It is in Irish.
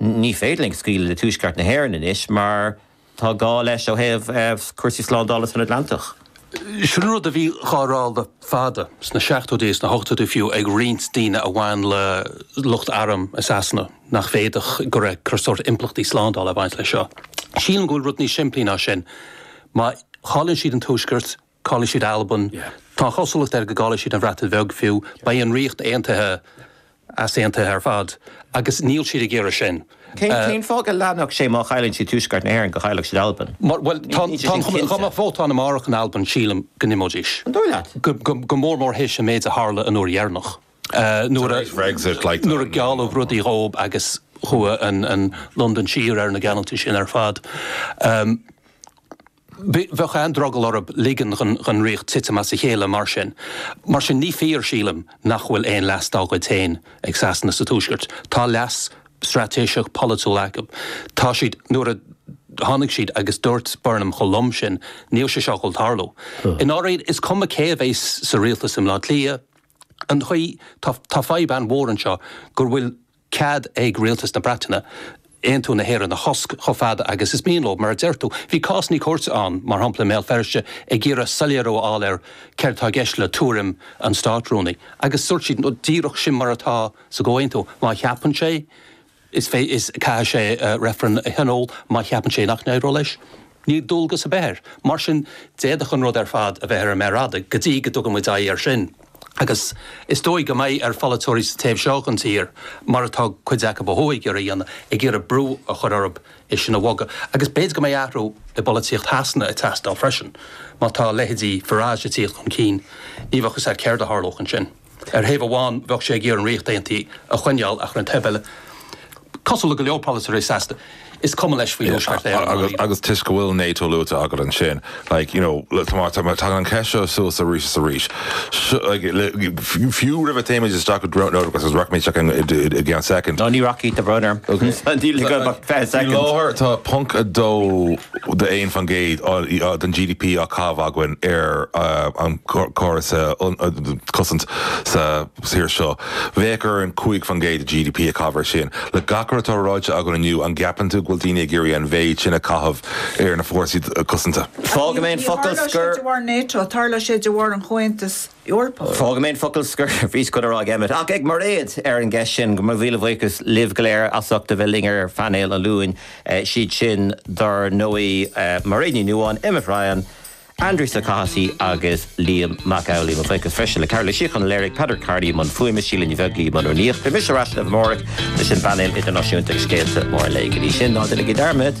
Ní féidir linn scaoileadh le Tuaisceart na hÉireann anois mar tá gá leis ó thaobh cúrsaí slándála san Atlantach. Sin rud a bhí dhá rá le fada, sna seachtóidí is na hochtóidí fiú, ag roinnt daoine a bhain le lucht airm i Sasana nach bhféadfadh, go raibh sórt impleachtaí slándála ag baint leis seo. Sílim go bhfuil rud níos simplí ná sin. Má chailleann siad an Tuaisceart, Caillfidh siad Albain. Tá an chosúlacht air go gcaillfidh siad an Bhreatain Bheag fiú. Beidh an Ríocht Aontaithe easaontaithe ar fad agus níl siad ag iarraidh sin. Cén fáth go leanfadh sé má chailleann siad Tuaisceart na hÉireann go gcaillfeadh siad Albain? Bhuel, tá an chuma air dá mbeadh vótáil amárach in Albain sílim go n-imeoidís. An dóigh leat? Go mór mór théis an méid a tharla an uair dheireanach nuair a gealladh rudaí dhóibh agus chuaigh an Londain siar ar na geallúintí sin ar fad. Bheadh an-drogall orthu ligean don Ríocht titim as a chéile mar sin. Mar sin, ní fíor, sílim, nach bhfuil aon leas dá gcuid féin ag Sasana sa Tuaisceart. Tá leas straitéiseach polaitiúil acu. Tá siad, nuair a tháinig siad agus dúirt Burnham chomh lom sin, níl sé seo ag dul tarlú. I ndáiríre, is cuma cé a bheas sa rialtas i mBleá Cliath, an chaoi, tá fadhb an-mhór anseo go bhfuil, cead ag Rialtas na Breataine, Aontú na hÉireann a chosc chomh fada agus is mian leo? Mar a deir tú, bhí cás cúirte ann, mar shampla, i mBéal Feirste ag iarraidh soiléiriú a fháil ar céard atá i gceist le tuairim an Státrúnaí agus dúirt siad nó díreach sin mar atá sa gcomhaontú. Má cheapann sé, is caithfidh sé reifreann a thionól, Má cheapann sé nach n-éireodh leis, Níl dualgas ar bith air. Mar sin, d'fhéadfadh an rud ar fad a bheith ar an méar fhada go dtí go dtugann muid aghaidh air sin. Agus is dóigh go mbeidh ar pholaiteoirí sa taobh seo den tír, mar atá cuid acu ó thuaidh ag iarraidh a dhéanamh, ag iarraidh brú a chur orthu é sin a bhogadh. Agus b'fhéidir go mbeidh athrú i bpolaitíocht Shasana ag teastáil freisin. Má tá leithéidí Farage ag tíocht chun cinn, ní bheadh fhios agat céard a tharlódh ansin. Ar thaobh amháin bheadh sé ag iarraidh an Ríocht Aontaithe a choinneáil ach ar an taobh eile, cosúil le go leor polaiteoirí Shasana, is cuma leis faoi Thuaisceart Éireann ná Éire. Agus toisc go bhfuil NATO luaite agat ansin, like, you know, tagann an cheist seo suas arís is arís. Fiú roimh a théimid isteach go Dubh Dóite, agus rachaimid isteach ann i gceann soicind. No, ní rachaidh, a Bhrian. Níl ag éirí liom ach 20 soicind. Faoi láthair tá 0.2 de 1 faoin gcéad den GDP á caitheamh againn ar an gcóras cosanta sa tír seo. Bheadh orainn 5 faoin gcéad de GDP a chaitheamh air sin. Le gach rud atá ráite againn inniu, an gceapann tú go bhfuil daoine ag iarraidh an mhéid sin a chaitheamh ar na fórsaí cosanta? Fágfaidh mé an focal scoir. Níor tharla sé de bharr NATO, tharla sé de bharr an Chomhaontais Eorpach. Fágfaidh mé an focal scoir faoi sconna ráig Emmet, ach ag Mairéad, ar an gceist sin. Go raibh míle buíochas libh go léir as ucht a bheith linn ar phainéal an Luain, siad sin dár ndóigh Mairéad Ní Nuadháin, Emmet Ryan, Aindrias Ó Cathasaigh agus Liam Mac Amhlaigh. Mo bhuíochas freisin le Cearbhall Ó Síocháin a léirigh, Peadar Kearney i mbun fuaime, Síle Ní Bheaglaoich i mbun rúnaíochta. Beidh mise ar ais libh amárach leis an bpainéal idirnáisiúnta agus scéalta móra an lae. Go dtí sin, ná déanaigí dearmad!